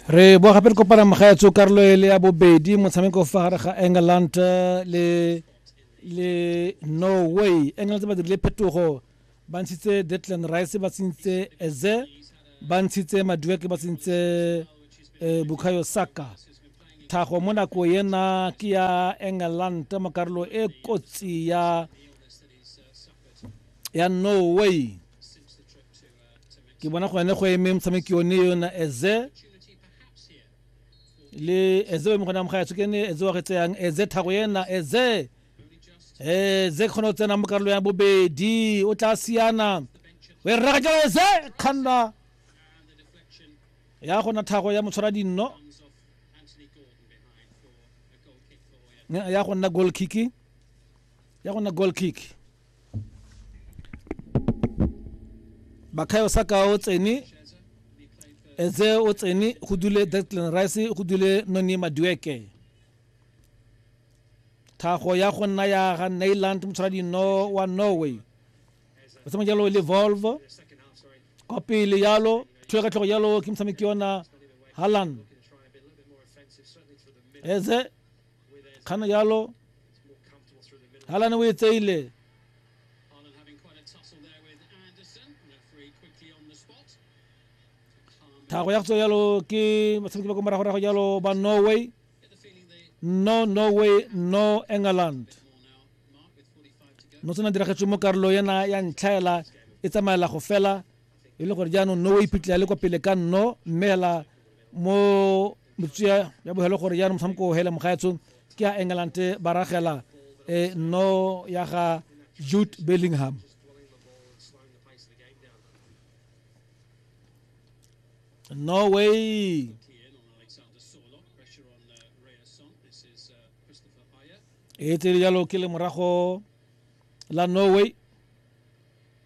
re boa gape re kopana mogaetso karolo e le ya bobedi motshameko fa gare ga england eh, le le norway england ba dirile phetogo ba ntshitse detland rice ba tsentse eze ba ntshitse madueke ba tsentse eh, bukayo saka tlhago mo nako ena ke ya england mo karolo e kotsi ya ya norway ke bona go ne go eme motshameki yone yona eze le eze o eme gone amogaya tswe ke ne eze wa re tseyang eze thago ena eze eze kgone go tsena mo karolo ya bobedi o tla siana o e rraga jalo eze kganna ya gona thago ya motshwara dinno ya go nna goal kick ya go nna goal kick bakhayo sa ka o tsene eze o tsene go dule declan rice go dule noni madueke thago ya go nna ya ga nailand motshwaradino wa norway o tsama jalo le volvo kwa pele yalo tlhoe ka tlhogo yalo ke motshameki yona halland eze kgang yalo halane o e tseile thago ya go tswa jalo ke batshameki ba ko moragorago jalo ba norway no norway no england no tsena diragetswe mo karolo yena ya ntlhaela e tsamaela go fela e le gore jaanong no o iphitlhela le kwa pele ka nno mme hela mo metsea ya bogelo gore jaanong motshameko o hele mogaetsho ke a england ba ragela e nno ya ga jude bellingham norway e tsere jalo ke le morago la norway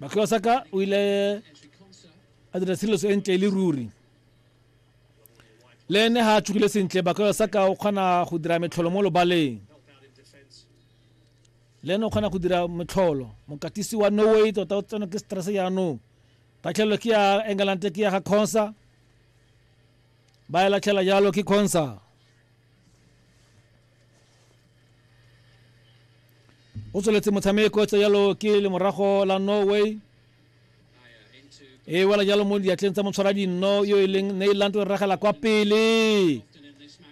Bakio Saka o ile a dira selo se ntle e le ruri le ene ga a tshogile sentle Bakio Saka o kgona go dira metlholo mo lobaleng le ene o kgona go dira metlholo mokatisi wa norway tota o tseno ke stress jaanong tatlhelelo ke ya england ke ya ga consa ba e latlhela jalo ke consa o tsweletse motshameko tse jalo ke lemorago la norway e wela jalo mo diatleng tsa motshwara dinno yo e leng neiland o ragela kwa pele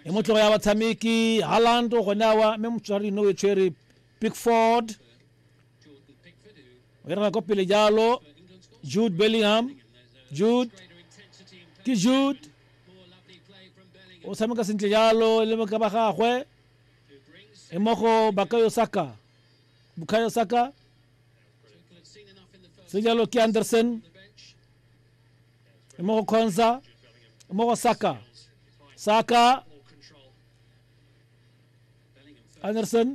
e motlogo ya batshameki halland o gone awa mme motshwara dinno o e tshwere pickford o e ragela kwa pele jalo jude bellingham jude ke jude o tshameka sentle jalo le moka ba gagwe e mo go bakayo saka bukayo saka se jalo ke anderson e mo go khonsa e mo go saka saka anderson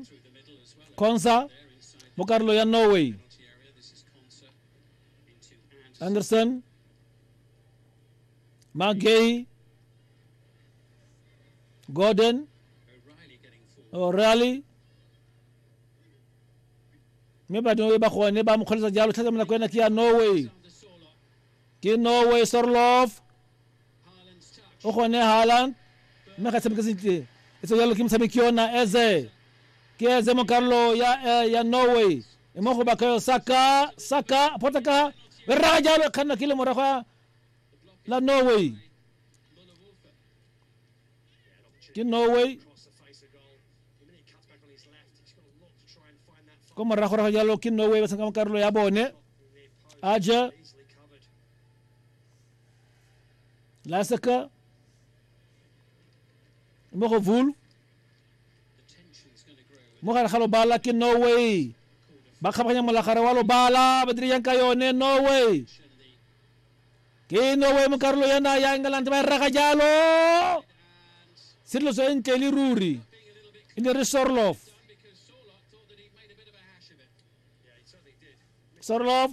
khonsa mo karolo ya norway anderson Magay, Gordon, O'Reilly, mme badimo e ba gone ba mo kgweletsa jalo thata mo nako ena ke ya norway ke norway sorlof o gone haland mme ga tshameke sentle e tse jalo ke motshameki yona eze ke eze mo karolo ya, eh, ya norway e mo go bakayo saka saka potaka e raya jalo kganna ke le morago ya la Norway ke Norway ko morago rago jalo ke Norway ba tshameka mo karolo ya bone aja laseka mo go vulu mo gare ga lobala ke norway ba kgabaganya molagare wa lobala ba dire yang ka yone norway ke norway mo karolo yana ya england ba e rega jalo sedloso e ntle le ruri e ne re sorlof sorlof